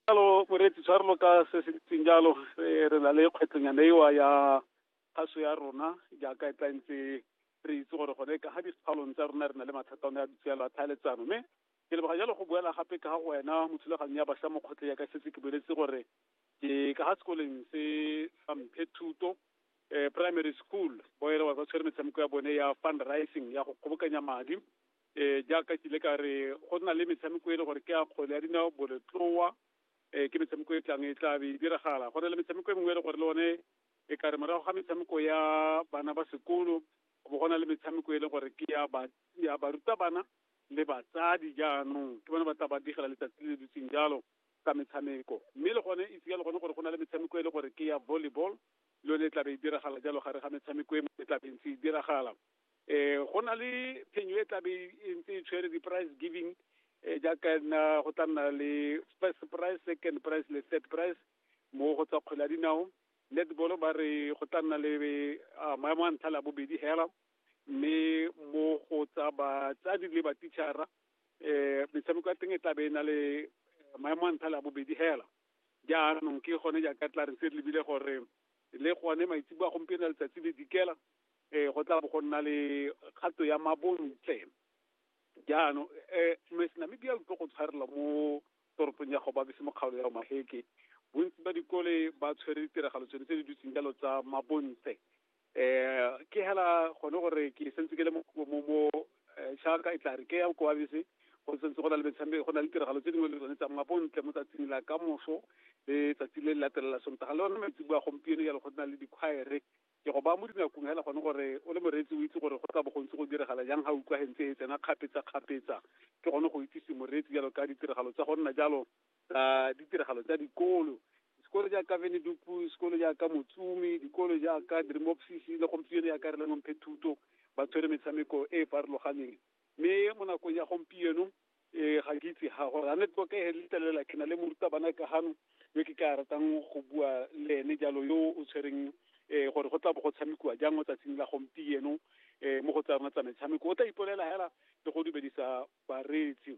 jalo moreetsi tshwarelo ka se se ntseng jalo re na le kgwetlhonyana ewa ya kgaso ya rona jaaka e tla ntse re itse gore gone ka ga dikgaolong tsa rona re na le mathata one a ditshialo a tlhaeletsano mme ke leboga jalo go boela gape ka ga wena mo thulaganyong ya bašwa mo kgotleng ya ka setse ke boletse gore ke ka ga sekoleng se sa mphe thuto primary school boere wa ba tshwere metshameko ya bone ya fundraising ya go kgobokanya madi um jaaka ke ile ka re go na le metshameko e le gore ke ya kgwele ya dinao boletloa um ke metshameko e tlang e tla be e diragala go na le metshameko e mengwe e le gore le one e ka re morago ga metshameko ya bana ba sekolo go go na le metshameko e le gore ke ya ba ya barutabana le batsadi jaanong ke bone ba tla ba digela letsatsi le le dutseng jalo ka metshameko mme le gone itse ka le gone gore go na le metshameko e le gore ke ya volleyball le yone e tla be e diragala jalo gare ga metshameko e e tla be ntse e diragala eh go na le phenyo e tlabe e ntse e tshwere di-price giving eh jaaka nna go tla nna le first price second price le third price mo go tsa kgwele ya dinao netball ba re go tla nna le ah, maemo a ntlha la bobedi hela mme mo go tsa batsadi le batichara eh metshameko ya teng e tlabe e na le maemo a ntlha la bobedi hela jaanong ke gone jaaka tla re se re lebile gore le gone maitsebo a gompieno letsatsi le dikela um go tla bo go nna le kgato ya mabontle jaanong um mes namibia utlo go tshwarelwa mo toropong ya gobabese mo kgaolo ya omaheke bontsi ba dikole ba tshwere ditiragalo tsone tse di dutseng jalo tsa mabontle um ke hela gone gore ke sentse ke le mo um jaaka e tla re ke ya koabese go sentse go na le metshameko go na le tiragalo tse dingwe le tsone tsa mabontle mo tsatsing la ka moso le tsatsi le le latelela sontaga le one maitsebo a gompieno jalo go na le dikgwaere ke go ba mo dinakong fela gone gore o le moreetsi o itse gore go tla bo gontse go diragala jang ga utlwa gentse e tsena kgapetsa-kgapetsa ke gone go itsise moreetsi jalo ka ditiragalo tsa go nna jalo tsa ditiragalo tsa dikolo sekolo jaaka venedupu sekolo jaaka motsumi dikolo jaaka dremopsisi le gompieno jaaka re lengwe mphethuto ba tshwere metshameko e e farologaneng mme mo nakong ya gompieno um ga ke itse ga gore a ne tlo ka e letlelela ke na le morutabana ka gano yo ke ka ratang go bua le ene jalo yo o tshwereng um gore go tla bo go tshamekiwa jang mo tsatsing la gompieno um mo go tsa rona tsa metshameko o tla ipolela hela le go dumedisa bareetsi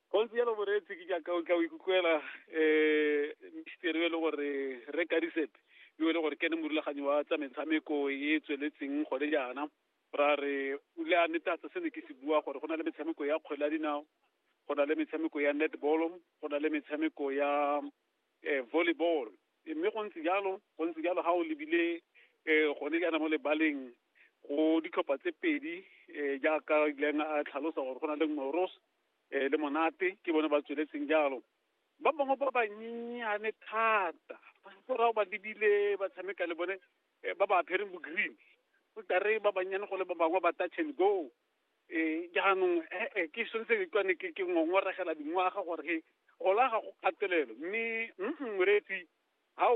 Gontsi jalo boreetsi ke jaaka o tla o ikutlwela um misteri yo e le gore re kadisepe yo e le gore ke ne morulaganyi wa tsa metshameko e e tsweletseng gone jaana ra re o le a netatsa se ne ke se bua gore go na le metshameko ya kgwele ya dinao go na le metshameko ya netball go na le metshameko ya um volleyball mme go ntse jalo go ntse jalo ga o lebile um gone jaana mo lebaleng go ditlhopha tse pedi um jaaka ileng a tlhalosa gore go na le moros eh, le monate ke bone ba tsweletseng jalo ba bangwe ba banyenyane thata borao ba lebile ba tshameka le bone eh, ba ba apereng bo-green o tare ba bannyane go le ba bangwe ba touch and go um jaanong ee ke swantse ke kwane ke ke ngongoregela dingwaga gore he gola ga go kgatelelo mme mm moreetsi ga o